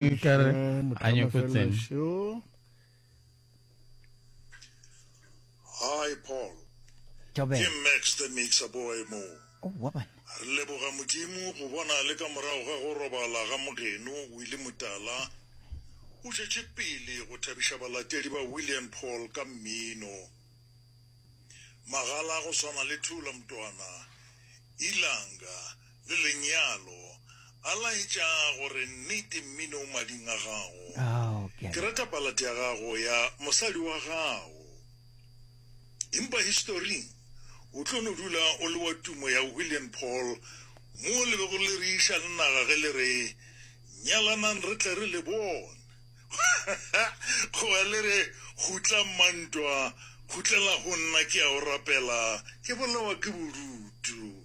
Nkare a nyoko tsene. Hi Paul. Tobela. Ke Max the Mixer Boy mo. Oh, wa bana. Re leboga Modimo go bona le ka morago ga go robala ga mogeno Willie Mutala o tšetše pele go thabiša balatedi ba Willie and Paul ka mmino. Magala go swana le Thula Mtwana, Ilanga, Le lenyalo. A laetša gore, Nnete, mmine o mading a gago. Ke rata balate ya gago ya mosadi wa gago. Empa historing, o tlo no dula o le wa tumo ya Willian Paul, mo le bego le reiša le naga ge le re, Nyalanang re tle re le bone. Goba le re, Khutla, mma ntwa, khutlela go nna, ke a o rapela, ke bolawa ke bodutu.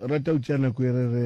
rata go tšea nako e re re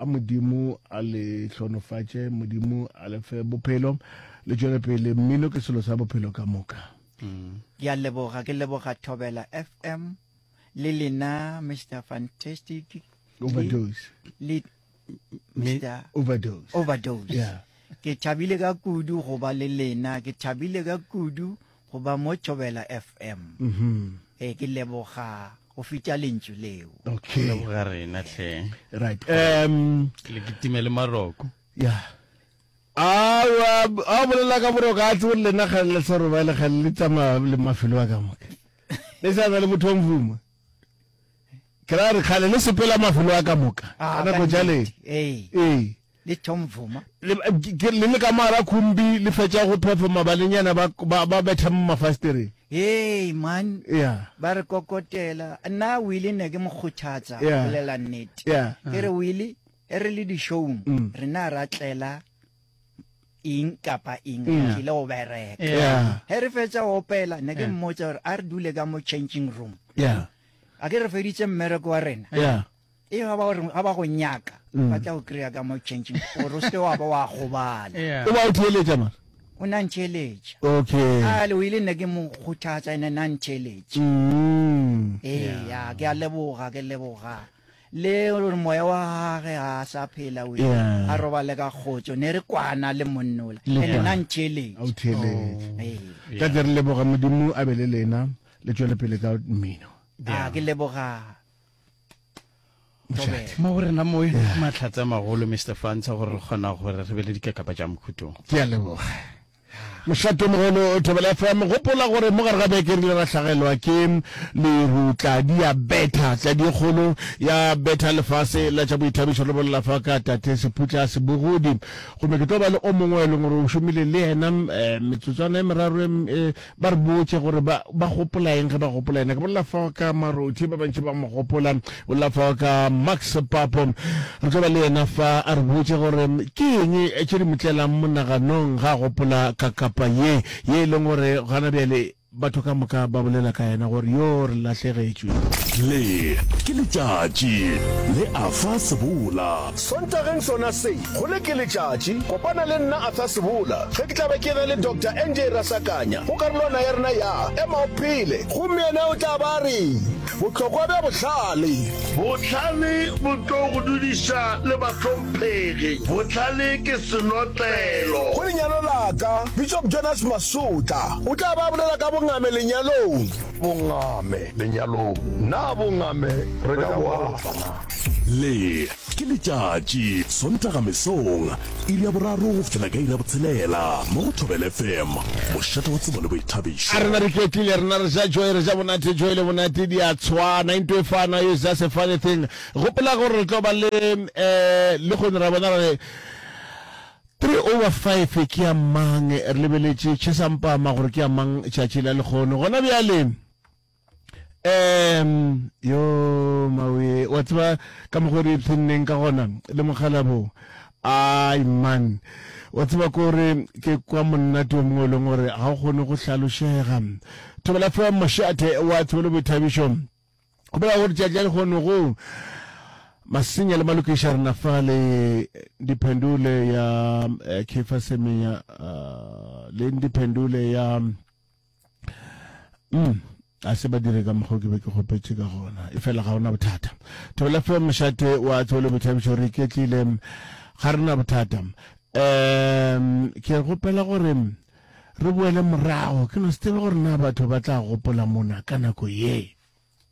a modimo a le hlonofatše modimo a le fe bophelo le tšwele pele mmino ke selo sa bophelo ka moka mm. ke a leboga ke leboga thobela fm le lena mr fantastic overdose le mr overdose overdose yeah. ke thabile ka kudu go ba le lena ke thabile ka kudu go ba mo thobela fm mm -hmm. e ke leboga go fetša lentšu leo okay ga rena hle right um le kitime le maroko yeah a a bolela ka boroko a tsebo lena ga le sa roba le ga le tsama le mafelo a ka moka le sa na le motho wa mvuma kra re khale le sepela mafelo a ka moka ana go jale eh eh le Tom Vuma. Le, ke, le le ka moara khumbi le fetša go phepha mabalenyana ba, ba, ba betha mo mafastereng. Hei, man. Yeah. Ba re kokotela. Nna Willie ne ke mo kgothatsa, Yeah. bolela nnete. Yeah. Ke re, Willie, e re le dishowung, Mm. rena ra tlela eng kapa eng, re Yeah. tlile go bereka. Yeah. Yeah. He re fetša go opela, ne ke Yeah. mmotsa gore a re dule ka mo changing room. Yeah. A ke re feditse mmereko wa rena. Yeah. ee ga ba reng ga ba go nyaka mm. ba tla go kry-a ka mo changing gore o seke wa ba wa gobala o ba o theeletša mara o na ntheeletša okay a le o ile nna ke mo kgothatsa ene na ntheeletša mm. ee ya ke a leboga ke leboga le gore moya wa gage ga a sa phela o a robale ka kgotso ne re kwana le monnola ene na ntheeletša ka tle re leboga modimo a be le lena le tswele pele ka mmino a ke leboga Mošate. Mo go rena mo mahlatse a magolo Mr. Fantsha gore re kgona gore re be le dikakapa tša mokhutong. Ke a leboga. Mošate o mogolo Thobela FM gopola gore mo gare ga beke rile ra hlagelwa ke leru tladi ya betha tladi e kgolo ya betha lefase la tša boithabišo re bolela fa ka tate seputla a sebogodi gomme ke tlo ba le o mongwe e leng gore o šomile le yena eh, metsotswana e meraro e m- e Ba re botše gore ba, ba gopola eng ge ba gopola yena. Ke bolela fao ka Marothi, ba bantši ba mo gopola. Ke bolela fao ka Max Papo. Re tlo ba le yena fa, a re botše gore ke eng tše di mo tlelang monaganong ge a gopola ka kapa ye, ye e leng gore gona bjale batho ka moka ba bolela ka yena gore yoo re lahlegetšwe. Le ke letšatši le a fa sebola. Sontageng sona se, Gole ke letšatši, kopana le nna Arthur Sebola ge ke tla be ke ge le Doctor NJ Rasakanya go karolwana ya rena ya Ema o Phele. Gomme yena o tla be a re, Bohlokwa bja bohlale. Bohlale bo tlo go dudiša le bahlomphegi. Bohlale ke senotlelo. Go lenyalo la ka, Bishop Jonas Masutla o tla be a bolela ka bongame lenyalong. Bongame lenyalong. Na bongame re ka bo alafa na? Le. Ke letšatši, Sontaga mesong, iri ya boraro go fihlela ka iri ya botshelela, mo go Thobela FM, mošate wa tsebo le boithabišo. A rena re ketlile, rena re ja joy, re ja monate, joy le monate di a tshwana, into e fana, it's just a funny thing. Gopola gore re tlo ba le um lehono ra bona gore three over five ke ya mang, re lebeletše Chesampama gore ke ya mang tšatši la lehono gona bjale. um yo mawe wa tseba ka mokgwa re ipshinneng ka gona le mokgalabo ai man wa tseba kore ke kwa monnate o mongwe e leng gore ga o kgone go hlalošega thobela fa mošate wa tshebelo boithabišo go bolela gore tšatša le kgone go masenya le malokiša rena fa le diphendule ya eh, kefa semeya uh, le diphendule ya mm a se ba dire ka mokgwa ke be ke kgopetše ka gona e fela ga ona bothata thobela fe mošate wa tsebole boithabišo re iketlile ga re na bothata um ke gopela gore re boele morago ke no se tsebe gore na batho ba tla gopola mona ka nako ye